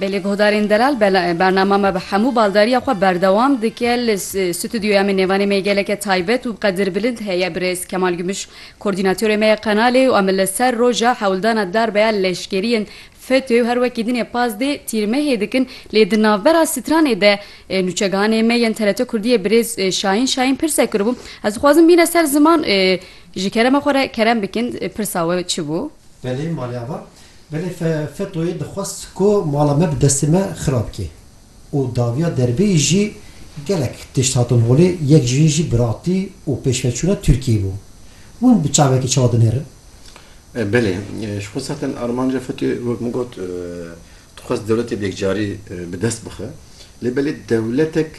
Belê guhdarên delal bernama me bi hemû baldariya xwe berdewam dike li stûdyoya me nêvanê me geleke taybet û qedir bilind heye birêz Kemal Gümüş koordînatörê me ye qenalê û em li ser roja hewldana darbeya leşkeriyên FETÖ û her wekî din ê pazdeh tîrmehê dikin lê di navbera stranê de nûçegihanê me yên TRT Kurdiyê birêz Şahin Şahin pirsek kiribû ez dixwazim bîne ser ziman ji kerema xwe re kerem bikin pirsa we çi bû? Belê malya me. Belê FETÖ'yê dixwest ku mala me bi destê me xirab bike û dawiya derbeyî jî gelek tişt hatin holê, yek ji wî jî biratî û pêşveçûna Tirkiyeyê bû. Hûn bi çavekî çawa dinêrin? Belê, ji xwe zaten armanca FETÖ'yê wek min got dixwest dewletê bi yekcarî bi dest bixe lê belê dewletek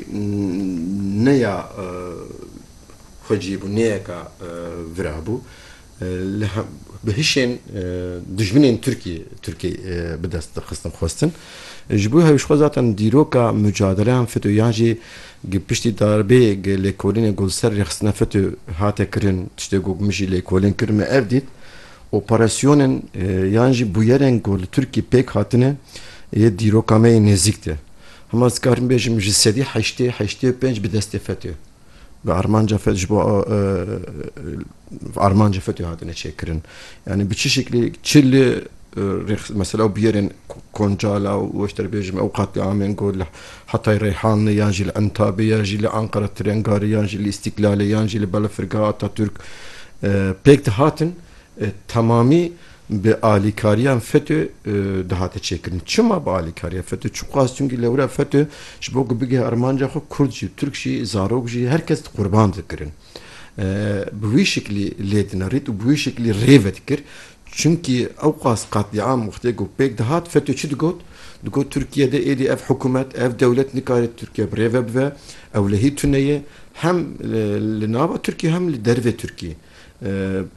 ne ya xwecî bû, ne yeka vira bû. Li bi hişên dijminên Tirkî Tirkî bi dest dixistin xwestin. Ji bo hewî xwe zaten dîroka mucadeleyan FETÖ yan jî gi piştî darbê gi lêkolînê ku li ser rêxistina FETÖ hate kirin tiştê ku min jî lêkolîn kir me ev dît. Operasyonên yan jî bûyerên ku li Tirkî pêk hatine yê dîroka me yê nêzîk de. Hema ez dikarim bêjim ji sedî heştê heştê û pênc bi destê FETÖ. bi armanca fet ji bo armanca fetê hatine çêkirin. Yanî bi çi şeklê çi li mesela û biyerên Koncala û ez dê bêjim ew qatliamên ku li Hetay Reyhanlê yan jî li Entabê yan jî li Anqera Tirengarê yan jî li Îstîklalê yan jî li Belefirgeha Atatürk pêk dihatin temamî Bi alîkariyan FETÖ dihate çêkirin. Çima bi alîkariya FETÖ? Çi xwest? Çimkî lewra FETÖ ji bo ku bigih armanca xwe Kurd jî, Tirk jî, zarok jî her kes qurban dikirin. Bi wî şiklî lê dinerît û bi wî şiklî rê vedikir. Çimkî ew qas qetlîam wextê ku pêk dihat FETÖ çi digot? Digot Tirkiye de êdî ev hikûmet, ev dewlet nikare Tirkiye bi rê ve bive. Ewlehî tune ye. Hem li nava Tirkiye hem li dervê Tirkiye.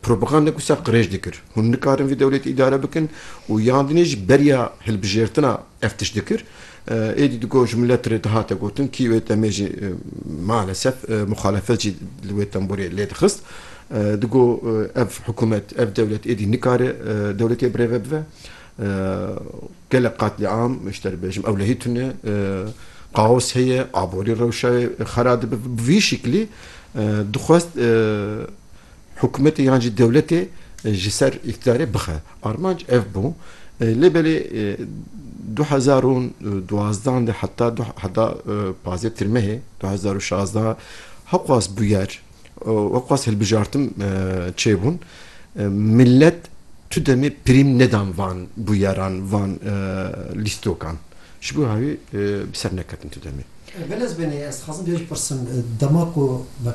Propaganda ku ser qirêj dikir. Hûn nikarin vî dewletê îdare bikin û yan dinê jî beriya hilbijêrtina ev tişt dikir. Êdî digot ji milet re dihate gotin kî wê demê jî malesef muxalefet jî li wê temborê lê dixist. Digot ev hikûmet, ev dewlet êdî nikare dewletê birêve bive. Gelek qatliam ji te re bêjim ewlehî tune kaos heye, aborî rewşayê xera dibe. Bi vî şiklî dixwest hikûmetê yan jî dewletê ji ser îktîdarê bixe. Armanc ev bû. Lê belê du hezar û duwazdeh de heta du heta pazdeh tirmehê du hezar û şazdeh hewqas bûyer Wek xwest hilbijartim çêbûn. Milet tu demê prîm nedan van bûyeran van lîstokan. Ji bo hewî bi ser neketin tu demê. Belez benê ez dixwazim vê jipirsim dema ku